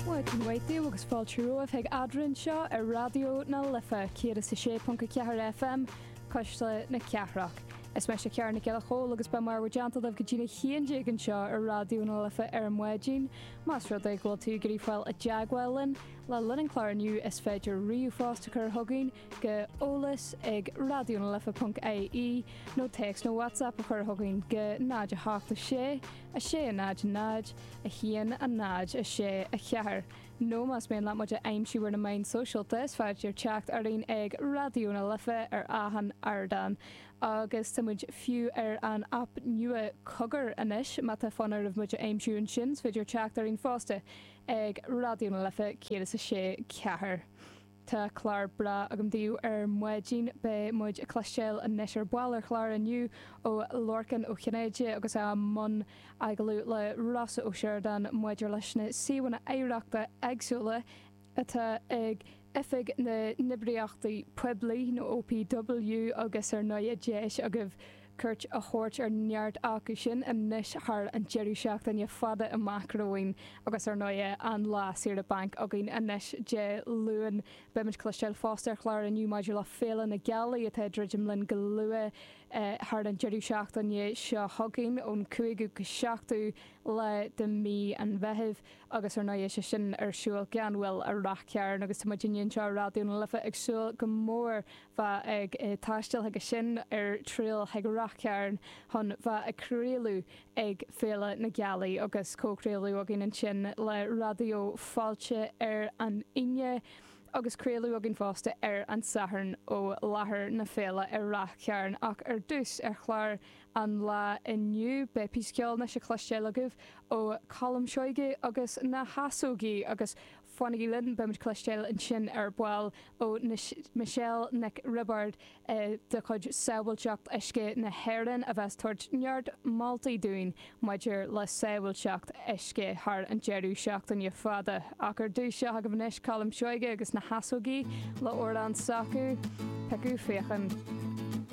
Bhuel, maidin mhaith daoibh agus fáilte romhaibh chuig Eadrainn seo ar Raidió na Life 106.4 FM, Cuisle na Cathrach. Is meise Ciara Nic Giolla Chomhaill agus beidh mé in bhur dteannta libh go dtí a haon déag anseo ar Raidió na Life ar maidin. Más rud é go bhfuil tú ag iarraidh fáil i dteagmháil linn le linn an clár inniu is féidir ríomhphost a chur chugainn chuig Eolas ag Raidió na Life ponc IE, nó text nó WhatsApp a chur chugainn chuig 08 6 6 0 0 1 0 6 4 nó más mian leat muid a aimsiú ar na meáin sóisialta is féidir teacht orainn ag Raidió na Life ar achan ardán agus tá muid fiú ar an aip nua Cogar anois má tá fonn oraibh muid a aimsiú ansin is féidir teacht orainn fosta ag Raidió na Life 106. 4. Tá clár breá agam daoibh ar maidin. Beidh muid ag cloisteáil anois ar ball ar chlár inniu ó Lorcán Ó Cinnéide agus é i mbun agallamh le Rossa Ó Sioradáin maidir leis na suíomhanna oidhreachta éagsúla atá ag Oifig na nOibreacha Poiblí nó OPW agus ar ndóigh deis agaibh cuairt a thabhairt ar neart acu sin anois thar an deireadh seachtaine fada amach romhainn agus, ar ndóigh, an lá saoire bainc againn anois Dé Luain. Beimid ag cloisteáil fosta ar chlár inniu maidir le Féile na Gealaí atá ag druidim linn go luath thar an deireadh seachtaine seo chugainn ón 5ú go 7ú lá de mhí an Mheithimh agus, ar ndóigh, sé sin ar siúl gan mhoill i Ráth Chairn agus tá muidinne anseo i Raidió na Life ag súil go mór bheith ag taisteal chuige sin ag triall chuig Ráth Chairn chun bheith ag craoladh ag Féile na Gealaí agus comhchraoladh againn ansin le Raidió Fáilte ar an Aoine agus craoladh againn fosta ar an Satharn ó láthair na féile i Ráth Chairn ach ar dtús ar chlár an lá inniu beidh píosa ceoil anois le cloisteáil agaibh ó Colm Seoighe agus na hEasógaí agus Fanaigí linn, beimid ag cloisteáil ansin ar ball ó Michelle Nic Roibeáird de chuid Sábháilteacht Uisce na hÉireann a bheas ag tabhairt neart moltaí dúinn maidir le sábháilteacht uisce thar an deireadh seachtaine fada. Ach ar dtús, seo agaibh anois Colm Seoighe agus na hEasógaí le amhrán s'acu, Piocadh Faochan.